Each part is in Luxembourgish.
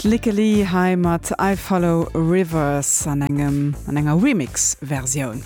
D'Lykke Li hei mat I Follow Rivers an engem an enger Remix Versioun.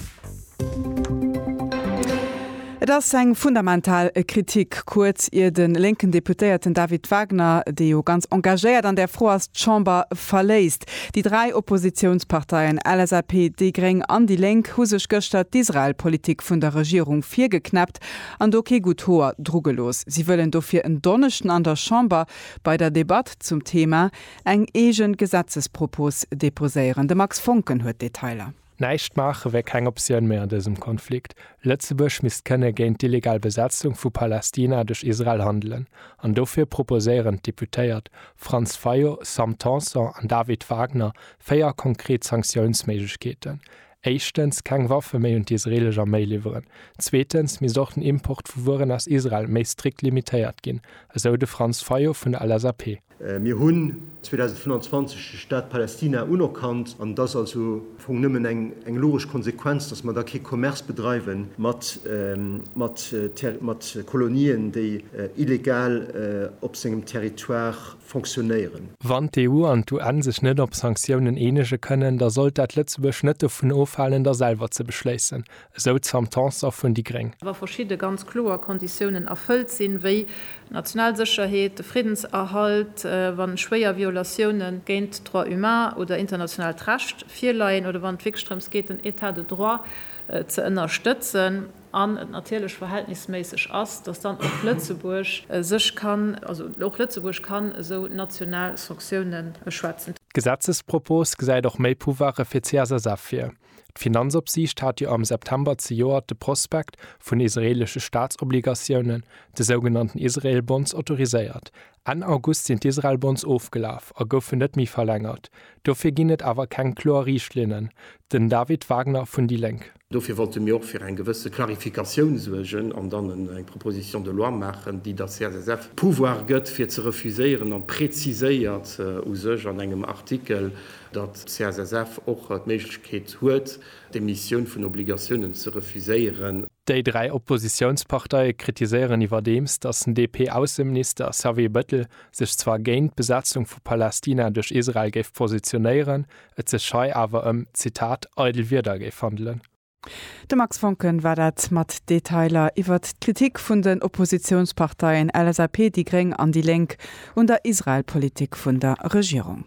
Et ass eng fundamental Kritik, kuerz ier de lénken Deputéierten David Wagner, dee jo ganz engagéiert an där Fro ass, d'Chamber verléisst. Déi dräi Oppositiounsparteien LSAP, déi Gréng an déi Lénk hu sech gëschter d'Israel-Politik vun der Regierung virgeknäpp. Text an do kee gutt Hoer dru gelooss. Si wëllen dofir en Donneschden an der Chamber bei der Debatt zum Thema eng eege Gesetzespropos deposéieren. De Max Voncken huet d'Detailer. Näischt maache wär keng Optioun méi an dësem Konflikt. Lëtzebuerg misst kënne géint d'illegal Besetzung vu Palästina duerch Israel handelen an dofir proposéieren d'Deputéiert Franz Fayot, Sam Tanson an David Wagner véier konkret Sanktiounsméiglechkeeten, éischtens keng Waffe méi un d'isreelesch Arméi liwweren, zweetens misst och den Import vu Wueren aus Israel méi strikt limitéiert ginn, esou de Franz Fayot vun der LSAP. Mir hunn 2025 de Staat Palästina unerkannt an et ass also am Fong nëmmen eng logesch Konsequenz, datt mer da kee Commerce bedreiwe mat Kolonien, déi illegal op sengem Territoire fonctionnéieren. Wann d'EU an d'UN sech net op Sanktiounen eenege kënnen, da sollt dat Lëtzebuerg net dovun ofhalen, der selwer ze beschléissen, esou d'Sam Tanson vun déi gréng. wa verschidde ganz kloer Konditiounen erfëllt sinn, wéi d'national Sécherheet, de Friddenserhalt, wa schwéier Violatioune géint d'Droits humains oder internationaalt Recht virleien oder wann et wierklech drëms geet, den État de droit ze ënnerstëtzen. an et natierlech verhältnisméisseg ass, dass dann och Lëtzebuerg sech kann, also och Lëtzebuerg kann esou national Sanctioune schwätzen. D'Gesetzespropos gesäit och méi Pouvoire fir d'CSSF vir. D'Finanzopsiicht hat jo am September zejoert de Prospekt vun israeelesche Staatsobligatiounen, de sougenannten Israel Bonds, autoriséiert. Enn August sinn d'Israel Bonds ofgelaf a goufen net méi verlängert. Dofir ginn et awer keng kloer Riichtlinnen. Den David Wagner vun déi Lénk. Dofir wollte mir och fir eng gewësse Clarificatioun suergen an dann eng Proposition de loi maachen, déi der CSSF de Pouvoir gëtt, fir ze refuséieren, an präziséiert u sech an engem Artikel, datt d'CSSF och d'Méiglechkeet huet, d'Emissioun vun Obligatiounen ze refuséieren. Déi dräi Oppositiounsparteie kritiséieren iwwerdeems, datt den DP-Ausseminister Xavier Bettel sech zwar géint d'Besetzung vu Palästina duerch Israel géif positionéieren, et sech hei awer ëm, Zitat, eidel Wierder géif handelen. De Max Voncken war dat mat Detailer iwwert d'Kritik vun den Oppositiounsparteien LSAP, déi gréng an déi Lénk un der Israel-Politik vun der Regierung.